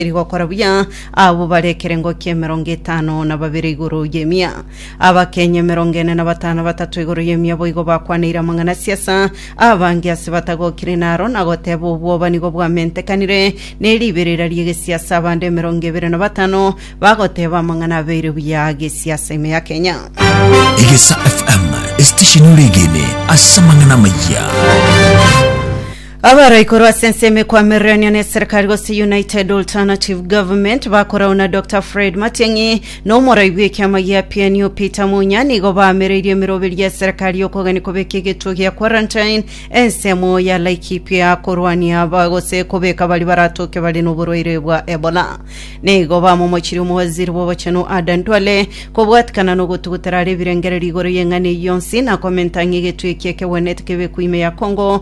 Eri gokora buya abwo bare ekerengo ki'emerongo etano na babere igoro y'emia. Abakenya emerongo ene na batano batato igoro y'emia boigo bakwanaire amang'ana a siasa, abange ase batagokire naro na goteba obwoba nigo bwamentekanire ne riberera ri'egesiasa abande emerongo ebere na batano bagoteba amang'ana abeire buya a gesiasa ime ya Kenya. Egesa FM, esitesheni ore egene ase amang'ana amayia. Abare igoro ase ensemo ekwamirenio neserikari gose United Alternative Government bakorau na Dr Fred Matiang'i na omorai bw'ekiama gia PNU Peter Munya nigo baamereirie emeroberio ya serikari y'okogani kobeka egetuo gia quarantine ensemo ya Laikipia korwania aba gose kobeka bari baratoke bare n'oborwaire bwa Ebola. Nigo bamomochirie omowaziri bw'obochenu Adan Duale kobwatikana n'ogotugutera are ebirengererio igoro y'eng'ana eyio yonsi na komenta ng'a egetuo eki ekegwenete kebekwe ime ya Congo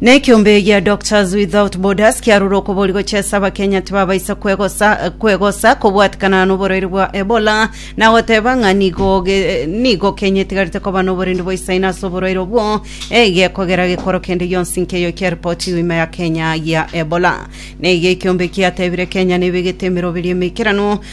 Na ekeombe gia Doctors Without Borders kiarure okobori gochesa abakenya tibabaisa kwegosa kwegosa kobwatikana noborwaire bwa Ebola na goteba ng'a nigo ge- nigo Kenya etigarete koba noborendi boisaine ase oborwaire obwo egekogera gekoro kende gionsi nkeyo kiaripotiwe ime ya Kenya gia Ebola. Na iga ekeombe kiatebire Kenya nebegete emeroberi emeikeranu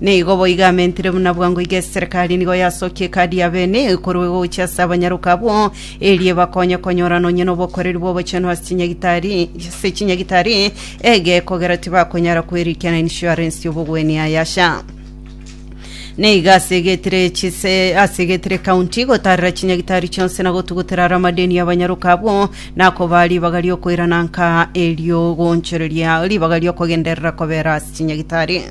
Nigo boigo amentire buna bwango iga eserekari nigo yasokia ekadi ya bene ekorwa egocha ase abanyaroka abwo, eria ebakonye konyorana onye nobokoreri bw'obochenu ase chinyagitari ase chinyagitari egekogera tibakonyara kwerikiana insurance y'obogwenia yayasha. Nigo asegetire chise asegetire county gotarera chinyagitari chionsi na gotugutera are amadeni y'abanyaroka abwo, na kobaa ribaga riokoirana nka eriogoonchoreria ribaga riokogenderera kobera ase chinyagitari.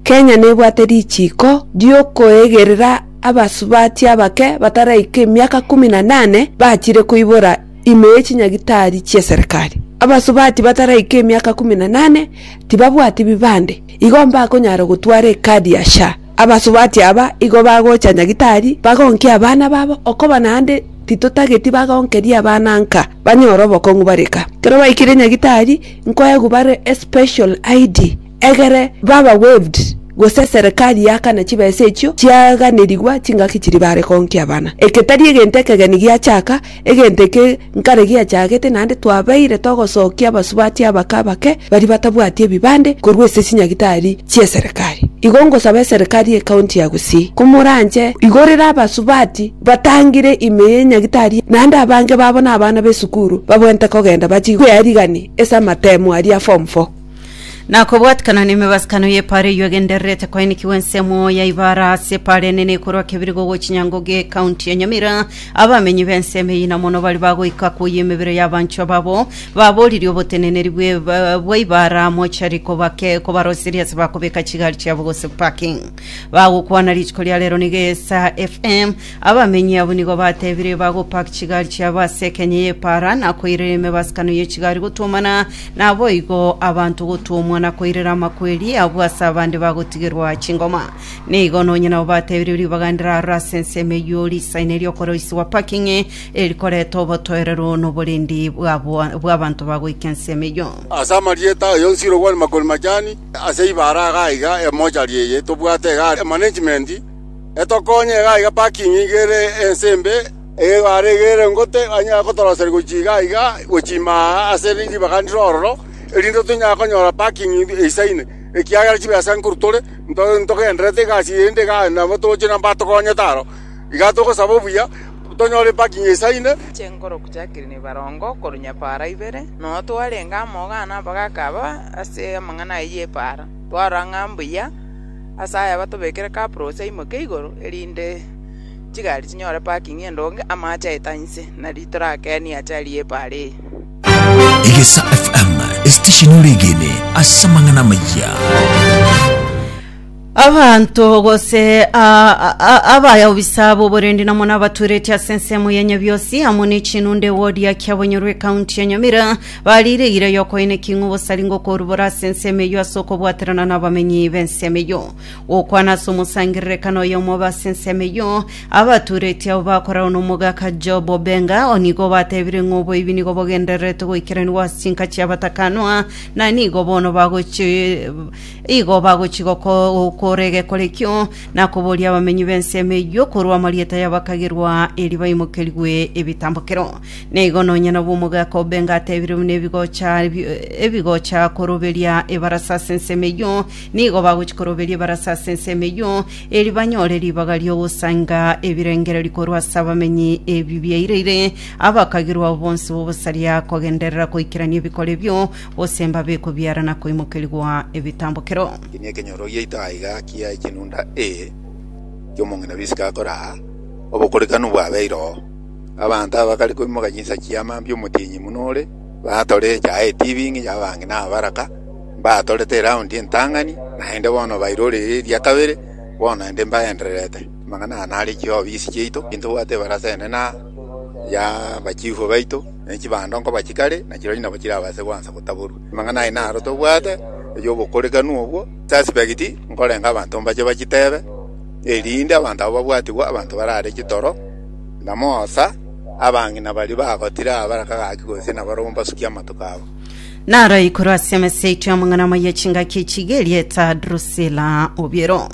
Kenya nebwate richiiko ri'okoegerera abasubati abake bataraika emiaka kumi na nane bachire koibora ime ye chinyagitari chi'eserekari. Abasubati bataraika emiaka kumi na nane tibabwati bibande, igo mbakonyara gotwara ekadi ya SHA. Abasubati aba igo bagocha nyagitari bagonkie abana babo okoba naende titotageti bagonkerie abana nka banyore obokong'u bare kaa. Ekero baikire nyagitari, Nkoegubare especial ID egere baba waived gose serikali yakana chibesa echio chiaganerigwa chingaki chiri bare konkia abana. Eke tari egento ekegeni giachaka, egento eke nkare giachagete naende twabeire togosokia abasubati abake abake baria batabwati ebibande korwa ase chinyagitari chi'eserikari. Igo ngosaba eserikari y'ecounty ya Gusii komoranche igorere abasubati Batangire ime ye nyagitari, naende abange babo nabana b'esukuru babwenerete kogenda bachie kwearigania ase amateemo aria a Form Four. Na kobwatikana nemebasakano y'epaara eyio egendererete koenikigwa ensemo ya Ibara ase epaara enene ekorwa Kebirigo gochia Nyangoge ekaunti ya Nyamira, abamenyi b'ensemo eyio na mono baria bagoika koyia emebere y'abanchwa babo, baboririe oboteneneri bwa Ibara mochari kobake kobaroseria ase bakobeka chigari chiabo gose parking. Bagokwana rituko ria rero nigo esa FM. Abamenyi abwo nigo batebire bagopak chigari chiabo ase ekenya y'epaara na koirera emebasakano ye chigari gotwomana naboigo abanto gotwomwa na koirera amakweri abwo ase abande bagotigerwa chingoma. Nigo nonye nabo batebire ribaga ndirarore ase ensemo eyio risaine riokoroisiwa parking erikoreta obotoereru noborendi bwabo bw'abanto bagoika ensemo eyio. Ase amarieta aye onsi irogwane makoni machani, Ase ibara iga aiga emochari eye tobwate iga are management etokonye iga aiga parking iga ere ense embe egare iga ere ngote anyare gotoroseria gochia iga aiga gochia ime aa ase ribaga ndire ororo erinde tonyare konyora parking eisaine ekiagera chibesa nkorwa tore ntogendererete egasi eye ende iga nabo togochie nabo batokonyete aro. Igaa togosaba obuya, tonyore parking esaine. Chinguru chiakire nebarongo korwa nyapaara ibere, nonya twarenge amo gana abagaka aba ase amang'ana aya y'epaara. Twarora ng'a mbuya ase aya batobekere kaprosi aimoke igoro, erinde chigari chinyore parking endonge, amache aete ang'e inse, nari torakenie achari y'epaara eye. Egesa FM, esitesheni ore egene ase amang'ana amayia. Abanto gose a- a- a- abayaobisa b'oborendi namo nabaturetie ase ensemo ya Nyabiosi amo ne chinunde wodi ya Kiabonyorwa ekaunti ya Nyamira bariire eira y'okoeneki ng'a obosari ngokorubora ase ensemo eyio ase okobwaterana nabamenyi b'ensemo eyio. Gokwana ase omosangererekano oyomo obe ase ensemo eyio, abatureti abo bakorerwa nomogaka Job Obenga onigo batebire ng'a oboibi nigo bogendererete goikeranigwa ase chinka chiabatakanwa na nigo bono bagochi Igo bagochia gokora egekorekio, na koboria abamenyi b'ensemo eyio korwa amarieta y'abakagerwa, erio baimokerigwe ebitambokero. Na igo nonya nabo omogaka o Benga ateebire buna ebigocha ebigocha koroberia ebarasa ase ensemo eyio, nigo bagochia koroberia ebarasa ase ensemo eyio, erio banyore ribaga ri'ogosainga ebirengererio korwa ase abamenyi ebi biaireire abakagerwa abo bonsi b'obosaria kogenderera koikerania ebikoro ebio, gose mbabe kobiara na koimokerigwa ebitambokero. Eki nekenyoro giaito aiga kia chinunda e kiomong'ina b'isiko akoraa, obokorekanu bwabeire oo. Abanto abakare koimoka chinsa chia mambia omotienyi buna ore, batore echaye etibi ng'incho abange na abaraka, mbatorete eraundi entang'ani, naende bono bairorire eria kabere, bono naende mbaendererete. Amang'ana aya nare chiofisi chiaito, intobwate ebarasa enene aa, ya abachifu baito. ne chibando nkoba chikare, na chirorio nabo chirabaase goansa gotaborwa. Amang'ana aye naro tobwate, ay'obokorekanu obwo, suspect, nkorenge abanto mbache bachitebe, erinde abanto aba babwatigwe abanto barare chitoro, na moosa, abang'ina baria bagotire aa bare kagaki gose nabarobwo mbasukie amatuko abo. Naro igoro ase emesa yaito y'amang'ana amaya chingaki chigerie eta Drusila obiero.